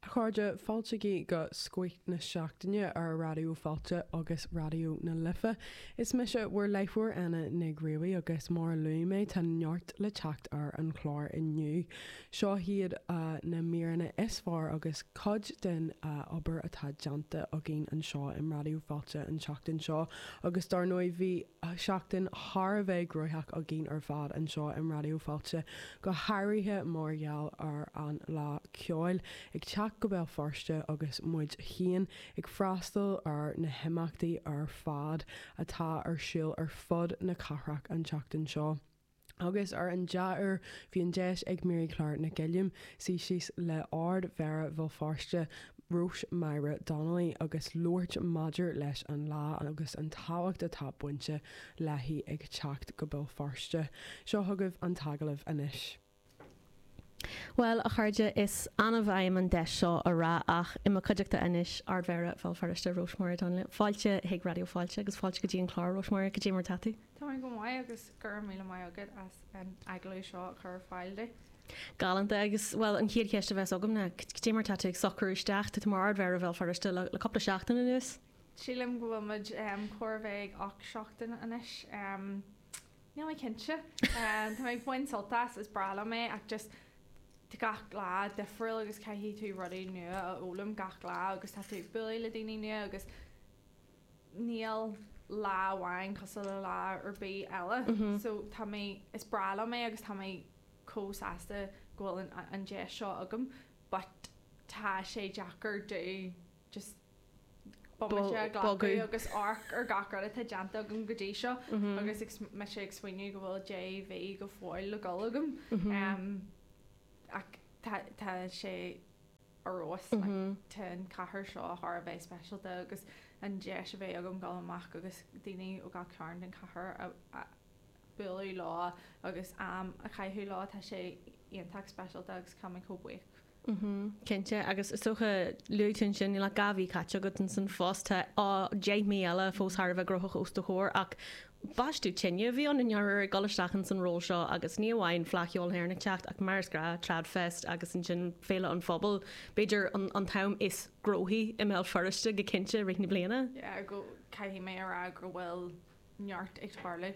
A chairde, fáiltígí go Scoith na Seachtaine ar Raidió Fáilte agus Raidió na Life. Is mise bhur láithreoir Anna Nig Ruairí agus mar a luaigh mé tá neart le teacht ar an chlár inniu. Seo iad na míreanna is fearr agus cuid den obair atá déanta againn anseo in Raidió Fáilte an tseachtain seo agus dár ndóigh bhí seachtain thar a bheith gnóthach againn ar fad anseo in Raidió Fáilte, go háirithe mar gheall ar an Fhleadh Cheoil ag teacht go Béal Feirste agus muid féin ag freastal ar na himeachtaí ar fad atá ar siúl ar fud na cathrach an tseachtain seo. agus ar an dea-uair bhí an deis ag Marie-Claire Nic Uilliam suí síos le Ardmhéara Bhéal Feirste, Róis-Máire Donnelly agus labhairt maidir leis an Fhleadh agus an tábhacht atá bainte léi ag teacht go Béal Feirste. Seo chugaibh an t-agallamh anois. Bhuel, a chairde, is annamh a fhaighim an deis seo a rá ach, i mo chuideachta anois, Ardmhéara Bhéal Feirste, Róis-Máire Donnelly. Fáilte chuig Raidió Fáilte agus fáilte go dtí an clár, Róis-Máire, cad é mar atá tú? Tá mé go maith agus go raibh míle maith agat as an agallamh seo a chur ar fáil dom. Galánta agus, bhuel, an chéad cheist a bheas agam ná, cad é mar atá tú ag socrú isteach? Tá tú mar Ardmhéara Bhéal Feirste le cúpla seachtain anuas. Sílim go bhfuil muid chóir a bheith ag ocht seachtain anois. Níl mé cinnte. Tá mé ag baint sult as, is breá liom é ach just tá gach lá difriúil agus caithfidh tú rudaí nua a fhoghlaim gach lá agus tá tú ag bualadh le daoine nua agus níl lá amháin cosúil le lá ar bith eile. So tá mé, is breá liom é agus tá mé chomh sásta go bhfuil an deis seo agam but tá sé deacair, just Beidh mise ag glacadh agus amharc ar gach rud atá déanta agam go dtí seo agus mise ag smaoineamh go bhfuil deich mí go fóill le dul agam ach tá sé ar fheabhas tá an chathair seo thar a bheith speisialta agus an deis a bheith agam dul amach agus daoine ó gach cearn den chathair a bualadh leo agus am a chaitheamh leo tá sé iontach speisialta agus táim chomh buíoch Cinnte, agus is dócha, luaigh tú ansin, níl ach dhá mhí caite agat in san phost, tá deich mí eile fós thar a bheith gnóthach os do chomhair, ach baisteadh tine a bhí ann i ndáiríre ag dul isteach in san ról seo agus ní amháin Fleadh Cheoil na hÉireann ag teacht ach mar is gnáth, TradFest agus ansin Féile an Phobail, b'fhéidir an t-am is gnóthaí i mBéal Feirste go cinnte i rith na bliana. Yeah, go, caithfidh mé a rá go bhfuil neart ag tarlú.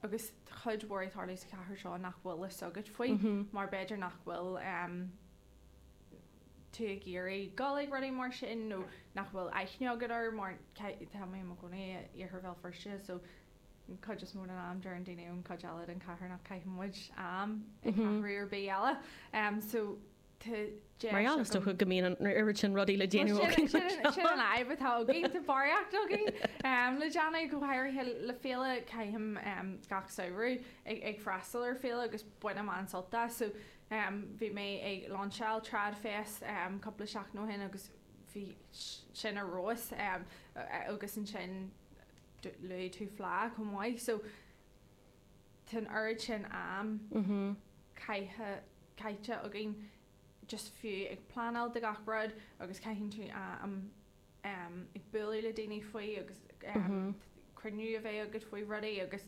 agus tá cuid mhór ag tarlú sa chathair seo nach bhfuil a fhios agat faoi mar b'fhéidir nach bhfuil tú ag iarraidh dul ag rudaí mar sin nó nach bhfuil aithne agat air mar tá mé i mo chónaí i iarthar Bhéal Feirste so an cuid is mó den am deireann daoine ón cuid eile den chathair nach caitheann muid am i gceathrú ar bith eile so deis agam. go mbíonn an oiread sin rudaí le déanamh againn, sin an fhadhb atá againn, tá barraíocht againn em le déanamh, go háirithe le féile, caithim em gach samhradh ag freastal ar féile agus bainim an-sult as so em bhí mé ag lainseáil TradFest em cúpla seachtain ó shin agus bhí sin ar fheabhas em agus ansin luaigh tú fleadh chomh maith so tá an oiread sin am caite againn just fiú ag pleanáil do gach rud agus caitheann tú am ag bualadh le daoine faoi agus cruinniú a bheith agat faoi rudaí agus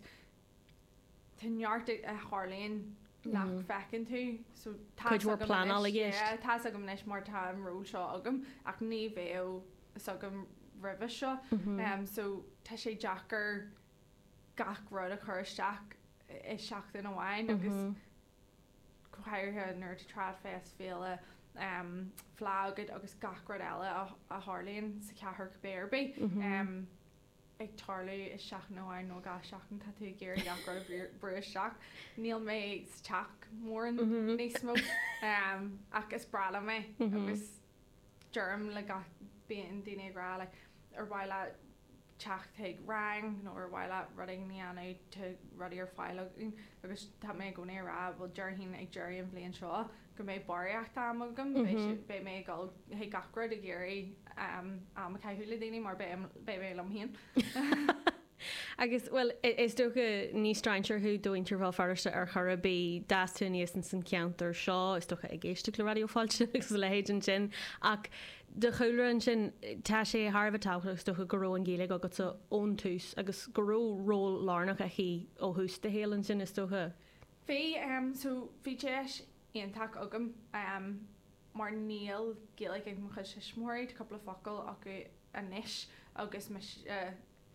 tá neart a tharlaíonn nach bhfeiceann tú so tá's agam anois mar tá an ról seo agam ach ní bheadh 's agam roimhe seo so tá sé deacair gach rud a chur isteach i seachtain amháin agus go háirithe nuair atá Trad Fest, féile, fleá agat agus gach rud eile a tharlaíonn sa chathair cibé ar bith ag tarlú i seachtain amháin nó i dhá sheachtain, tá tú ag iarraidh gach rud a bhrú isteach. Níl mé sa teach mórán níos mó ach is breá liom é agus deirim le gach bíonn daoine ag rá like ar mhaith leat teacht chuig rang nó ar mhaith leat rud éigin a dhéanamh tá rudaí ar fáil againn agus tá mé i gcónaí ag rá bhuel déarfainn ag deireadh an bhliain seo go mbeidh barraíocht am agam beidh mé ag dul chuig gach rud ag iarraidh am a chaitheamh le daoine mar beidh mé liom féin Agus, bhuel, is dócha, ní strainséir thú do mhuintir Bhéal Feirste ar chor ar bith. D'fhás tú aníos ins an cheantar seo, is dócha, ag éisteacht le Raidió Fáilte agus a leithéid ansin. Ach do chúlra ansin, tá sé thar a bheith tábhachtach, is dócha, go raibh an Ghaeilge agatsa ón tús agus go raibh ról lárnach aici ó thús do shaoil ansin, is dócha. Bhí, so, bhí deis iontach agam mar níl Gaeilge ag mo chuid tuismitheoirí, tá cúpla focal acu anois agus mise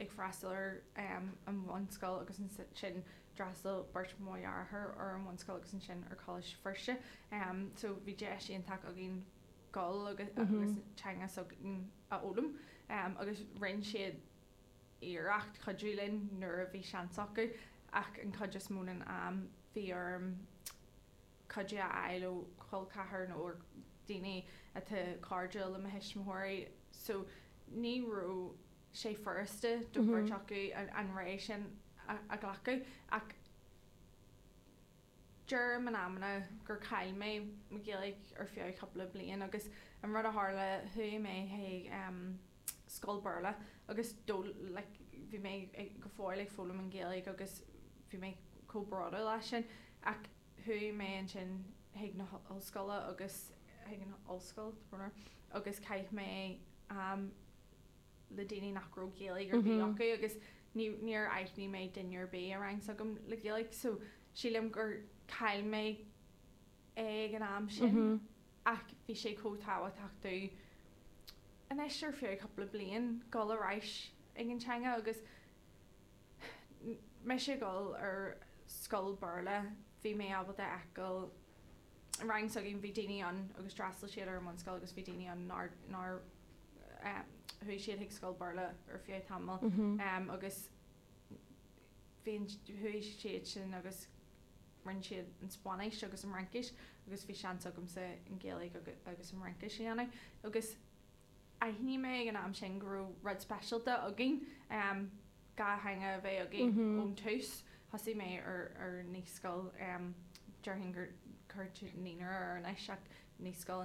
ag freastal ar an bhunscoil agus ansin d'fhreastail beirt mo dheartháir ar an bhunscoil agus ansin ar Choláiste Feirste so bhí deis iontach againn dul agus agus an teanga s'againn a fhoghlaim agus rinne siad iarracht cuidiú linn nuair a bhí seans acu ach an chuid is mó den am bhí orm cuidiú a fháil ó cholceathair nó ó daoine atá cairdiúil le mo thuismitheoirí so ní raibh sé furasta do chuid acu an réidh sin a ghlacadh ach deirim in amanna gur chaill mé mo Ghaeilge ar feadh cúpla bliain agus an rud a tharla chuaigh mé chun scoil Béarla agus bhí mé go fóill ag foghlaim an Ghaeilge agus bhí mé chomh bródúil as sin ach Chuaigh mé ansin chuig na hollscoile agus chuig an ollscoil agus chaith mé am le daoine nach raibh Gaeilge ar bith acu agus ní níor aithnigh mé duine ar bith i rang s'agam le Gaeilge so sílim gur chaill mé é ag an am sin ach bhí sé chomh tábhachtach domh anois ar feadh cúpla bliain dul ar ais ag an teanga agus mise ag dul ar scoil Béarla bhí mé ábalta a fheiceáil an rang s'againn bhí daoine ann agus d'fhreastail siad ar an mbunscoil agus bhí daoine ann nár nár chuaigh siad chuig scoil Béarla ar feadh tamaill agus bhí chuaigh siad sin agus rinne siad an Spáinnis agus an Fhraincis agus bhí seans agamsa an Ghaeilge agus an Fhraincis a dhéanamh agus Aithin mé ag an am sin go raibh rud speisialta againn, dhá theanga a bheith agam ón tús. Thosaigh mé ar naíscoil, déarfainn go gcuirtear naíonra air anois ach naíscoil